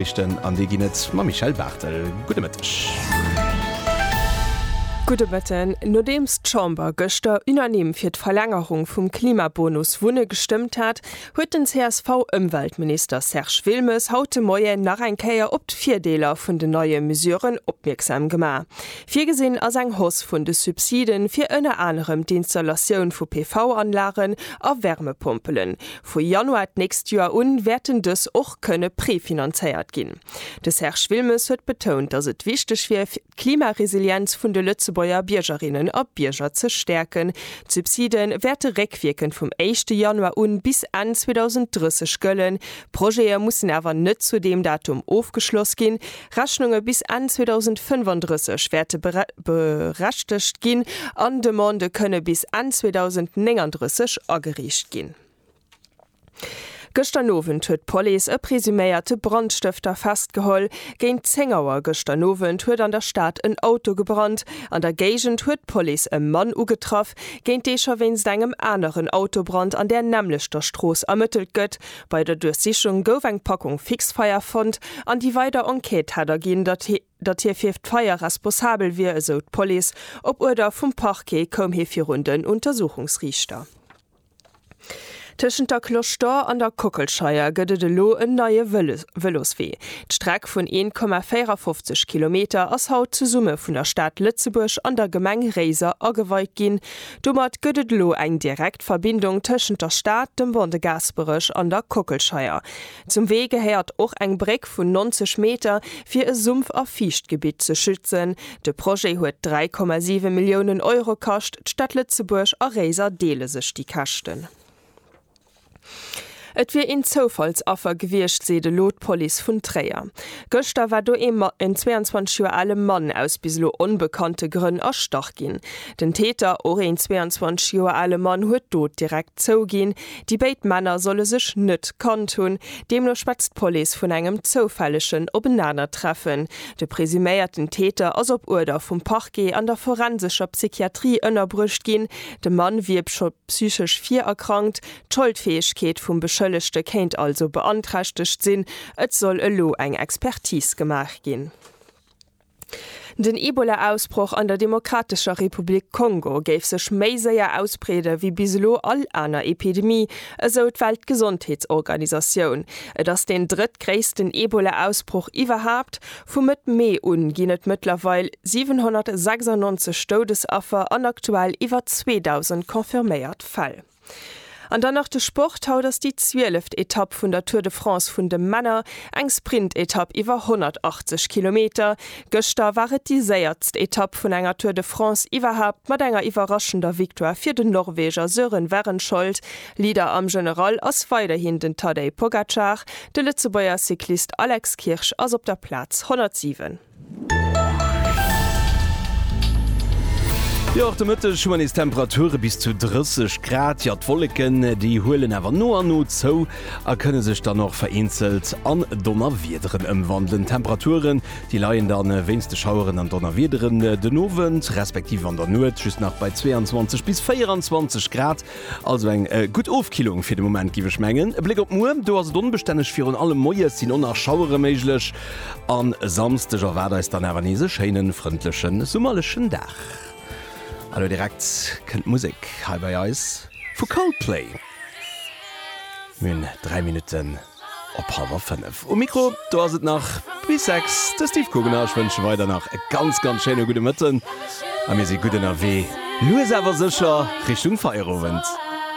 Noriichten an déi ginn et mam Michèle Barthel. Gudde Mëtteg. Gudde Mëtten. Nodeems d'Chamber gëschter unanime fir d'Verlängerung vum Klimabonus Wunne gestëmmt hat, huet den CSV-Ëmweltminister Serge Wilmes haut de Moien nach eng Kéier op d'Virdeeler vun den neie Mesuren opmierksam gemaach. Virgesinn ass eng Hausse vun de Subside fir ënner anerem d'Installatioun vu PV-Anlagen a Wärmepompelen. Vu Januar d'nächst Joer u wäerten dës och kënne prefinanzéiert ginn. De Serge Wilmes huet betount, datt et wichteg wier, fir d'Klimaresilienz vun de Lëtzebuerger Biergerinnen a Bierger ze stäerken. D'Subside wäerte réckwierkend vum éischte Januar u bis Enn 2030 gëllen. Projete mussen awer net zu deem Datum ofgeschloss ginn, Rechnunge bis Enn 2035 wäerte berechtegt ginn an Demandë kënne bis Enn 2039 agereecht ginn. Gëschter Nowend huet d'Police e presuméierte Brandstëfter festgeholl. Géint 10 Auer gëschter Nowend huet an der Stad en Auto gebrannt. An der Géigend huet d'Police e Mann ugetraff, géint dee scho wéinst engem aneren Autobrand an där nämmlechter Strooss ermëttelt gëtt. Bei der Duerchsichung gouf eng Packung Fixfeier fonnt an déi weider Enquête hätt erginn, datt hie datt hie fir d'Feier responsabel wier, esou d'Police. Op Uerder vum Parquet koum hie virun den Untersuchungsriichter. Tëschent der Cloche d'Or an der Kockelscheier gëtt et elo en neie Vëloswee. D'Streck vun 1,54 Kilometer ass haut zesumme vun der Stad Lëtzebuerg an der Gemeng Réiser ageweit ginn. Domat gëtt et elo eng direkt Verbindung tëschent der Stad, dem Pont de Gaasperech an der Kockelscheier. Zum Wee gehéiert och eng Bréck vun 90 Meter, fir e Sumpf a Fiichtgebitt ze schützen. De Projet huet 3,7 Milliounen Euro kascht, d'Stad Lëtzebuerg a Réiser deele sech déi Käschten. Et wier een Zoufallsaffer gewiescht, seet elo d'Police vun Tréier. Gëschter war do ee 22 Joer ale Mann aus bis elo onbekannte Grënn erstach ginn. Den Täter, och een 22 Joer ale Mann, huet d'Dot direkt zouginn. Déi béid Männer solle sech net kannt hunn. Deemno schwätzt d'Police vun engem zoufällegen Openanertreffen. De presuméierten Täter ass op Uerder vum Parquet an der forensescher Psychiatrie ënnerbruecht ginn. De Mann wier psychesch virerkrankt, d'Scholdfäegkeet vum Beschëllegte kéint also beanträchtegt sinn. Et soll elo eng Expertis gemaach ginn. Den Ebola-Ausbroch an der Demokratescher Republik Kongo géif sech méi séier ausbreede wéi bis elo all aner Epidemie, esou d'Weltgesondheetsorganisatioun. Et ass deen drëttgréissten Ebola-Ausbroch iwwerhaapt, Vu Mëtt Mee un ginn et mëttlerweil 796 Doudesaffer an aktuell iwwer 2.000 confirméiert Fäll. An dann nach de Sport, Haut ass déi zwieleft Etapp vun der Tour de France vun de Männer, eng Sprintetapp iwwer 180 Kilometer. Gëschter war et déi séiertst Etapp vun enger Tour de France iwwerhaapt mat enger iwwerraschender Victoire fir den Norweger Sören Wehrenskjold. Leader am General ass weiderhin den Tadej Pogacar, de Lëtzebuerger Cyclist Alex Kirsch ass op der Plaz 107. Jo, och de Mëtteg hu mer nees Temperature bis zu 30 Grad. Jo, d'Wolleken, déi huelen awer no a no zou a kënne sech dann och vereenzelt an Donnerwiederen ëmwandelen. D'Temperaturen, déi leien da wéinst de Schaueren an Donnerwiederen den Owend, respektiv an der Nuet just nach bei 22 bis 24 Grad. Also eng gutt Ofkillung fir de Moment giff ech mengen. E Bléck op muer, do ass et onbestänneg, virun allem moies sinn on nach Schauere méiglech an e Samsdeg erwaart eis dann awer nees e schéinen, frëndlechen, summerlechen Dag. An elo direkt kënnt d'Musek hei bei eis vu Coldplay. Mir hunn 3 Minutten. op hallwer 5. Um Mikro do ass et nach bis 6, de Steve Kuggen a ech wënsche weider nach e ganz ganz schéine gudde Mëtten a mir si gutt ënnerwee lues awer sécher Richtung Feierowend.